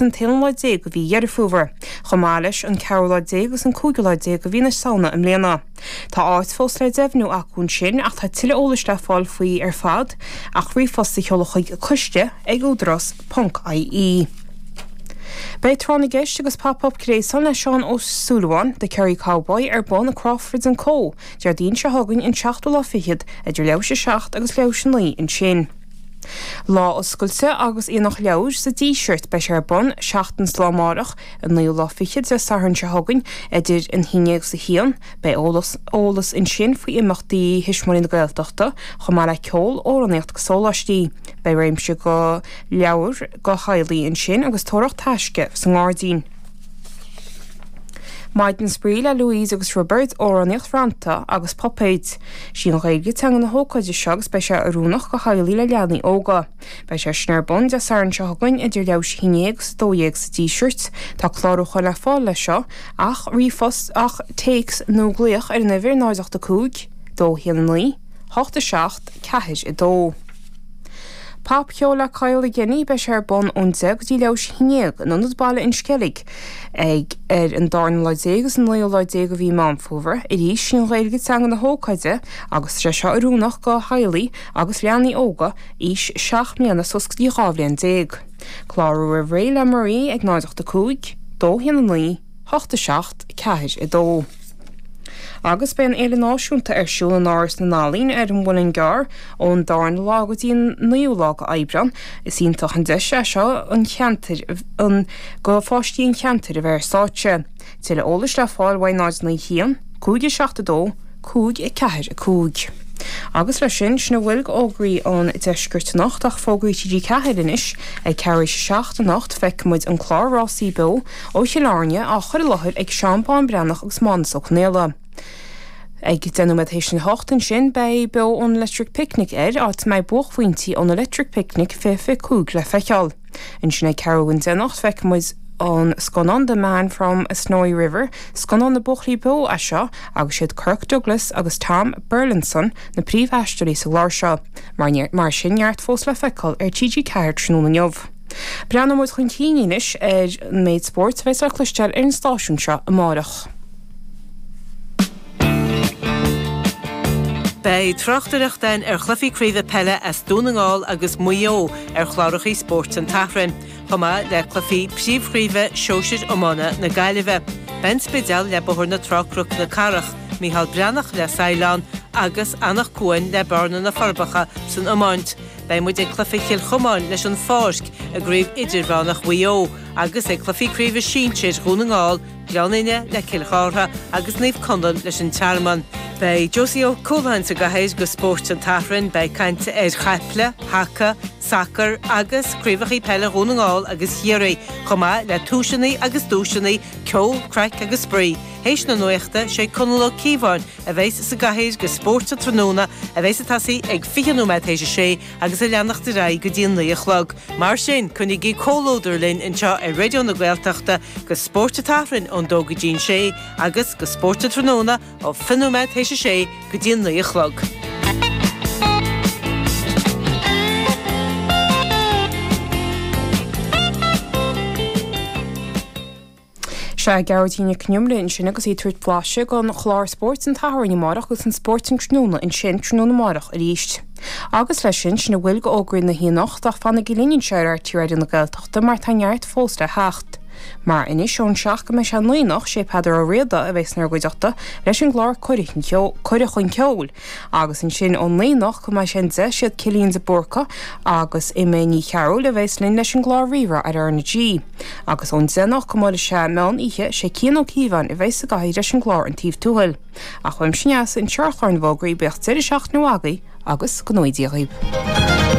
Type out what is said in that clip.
an t-aonú lá déag de mhí Dheireadh Fómhair, chomh maith leis an ceathrú lá déag agus an cúigiú lá déag de mhí na Samhna i mbliana. Tá áit fós le deimhniú acu ansin ach tá tuilleadh eolais le fáil faoi ar fad ach ríomhphost a sheoladh chuig, coiste ag údarás ponc IE. Beidh Tráth na gCeist agus Pop Up Gréasáin le Seán Ó Súilleabháin, The Kerry Cowboy, ar bun i Crawford and Co. Déardaoin seo chugainn, an seachtú lá fichead, idir leathuair tar éis a 7 agus leathuair tar éis a 9 ansin. Lá oscailte agus Aonach Leabhar sa Díseart beidh sé ar bun seachtain 's lá amárach, an naoú lá fichead Dé Sathairn seo chugainn, idir an haon déag 's a haon. Beidh eolas eolas ansin faoi imeachtaí Thuismitheoirí na Gaeltachta, chomh maith le ceol, amhránaíocht 'gus sóláistí. Beidh réimse go leabhair go theaghlaigh ansin agus tóraíocht taisce sa ngairdín. Maidin spraoi le Louise agus Roibeard, amhránaíocht, rannta agus puipéid. Sí an Ghaeilge teanga na hócáide seo agus beidh sé oiriúnach go theaghlaigh le leanaí óga. Beidh sé sin ar bun Dé Sathairn seo chugainn idir leathuair tar éis a haon déag agus a dó dhéag sa Díseart. Tá clárúchán le fáil leis seo ach ríomhphost, ach téacs nó glaoch ar an uimhir 0 8 5, 2 1 9, 8 7, 4 2. Pop-cheol le Kyle le Ginny, beidh sé ar bun ón 10 go dtí leathuair tar éis a haon déag in Ionad Baile an Sceilg ag ar an darna lá déag is an naoú lá déag de mhí Meán Fómhair. Arís, sí an Ghaeilge teanga na hócáide agus tá sé seo oiriúnach go theaghlaigh agus leanaí óga aois seacht mbliana suas go dtí dhá bhliain déag. Clárú roimh ré le Marie ag 085 219 hocht a seacht ceathair a dó. Agus beidh an Fhéile Náisiúnta ar siúl in Áras na nEalaíon ar an Mhuileann gCearr ón darna lá go dtí an naoú lá go Aibreán. Is iontach an deis é seo an cheantair an go pháistí an cheantair a bheith ar stáitse. Tuilleadh eolais le fáil uaidh 0 9 1 5 a seacht a dó cúig a ceathair a cúig. Agus leis sin, sin a bhfuil go fhógraí ón Deisceart anocht ach fógraí TG4 anois ag ceathrú tar éis a seacht anocht feicfidh muid an clár rásaí beo ó Chill Airne, á chur i láthair ag Seán Bán Breathnach agus Mánus Ó Conghaile. Ag deich nóiméad tar éis a hocht ansin beidh Beo ón Electric Picnic air, áit a mbeidh buaicphointí ón Electric Picnic 2025 le feiceáil. Ansin ag ceathrú don deich anocht feicfidh muid an scannán The Man from Snowy River, scannán na buachaillí bó é seo agus siad Kirk Douglas agus Tom Burlinson na príomhaisteoirí sa gclár seo. Mar sin, neart fós le feiceáil ar TG4 tráthnóna inniu. Breathnóidh muid chun cinn anois ar an méid spóirt a bheas le cloisteáil ar an stáisiún seo amárach. Beidh tráchtaireacht againn ar chluichí craoibhe peile as Dún na nGall agus Maigh Eo ar chlárachaí Spórt an tSathairn, chomh maith le cluichí príomhchraoibhe shóisir iomána na Gaillimhe. Beidh an Spidéal le Bóthar na Trá Cnoc na Cathrach, Micheál Breathnach le Saighleán agus Anach Cuain le Bearna-Na Forbacha san iomáint. Beidh muid ag cluiche Chill Chomáin leis an Pháirc i gCraobh Idirmheánach Mhaigh Eo agus ag cluichí Craoibhe Sinsir Dhún na nGall, Gleann Fhinne le Cill Chartha agus Naomh Conaill leis an Tearmann. Beidh Josie Ó Cualáin sa gcathaoir do Spórt an tSathairn. Beidh caint ar chaiple, haca, sacar agus craobhacha peile Dhún na nGall agus Chiarraí, chomh maith le tomhaiseanna agus duaiseanna, ceol, craic agus spraoi. Théis na nuachta, sé Conall Ó Cíobháin a bheas sa gcathaoir go Spórt an Tráthnóna a bheas ag tosaí ag 20 nóiméad théis a sé agus ag leanacht ar aghaidh go dtí a naoi a chlog. Mar sin, coinnigí comhluadar linn anseo ar Raidió na Gaeltachta go Spórt an tSathairn ón dó go dtí an sé agus go Spórt an Tráthnóna ó 20 nóiméad théis a sé go dtí a naoi a chlog. Sea, Gearóidín Nic an Iomaire ansin agus í ag tabhairt blaiseadh den chlár Spórt an tSathairn amárach agus an Spórt an tráthnóna ansin, tráthnóna amárach arís. Agus leis sin, sin a bhfuil de fhógraí na hoíche anocht, ach fanaigí linn anseo ar RTÉ Raidió na Gaeltachta mar tá neart fós le theacht. Mar anois ón seacht go mbeidh sé a naoi anocht, sé Peadar Ó Riada a bheas inár gcuideachta leis an gclár Cuireadh Chun Ceoil, Agus ansin ón naoi anocht go mbeidh sé an 10, siad Cillian de Búrca agus Emma Ní Chearúil a bheas linn leis an gclár Rí-Rá ar R na G. Agus ón 10 anocht go mbeidh sé an meán oíche, is é Cian Ó Cíobháin a bheas sa gcathaoir leis an gclár An Taobh Tuathail. Ach uaimse anois, anseo ar chlár na bhFógraí, bíodh deireadh seachtaine mhaith agaibh agus go ngnóthaí Dia dhaoibh.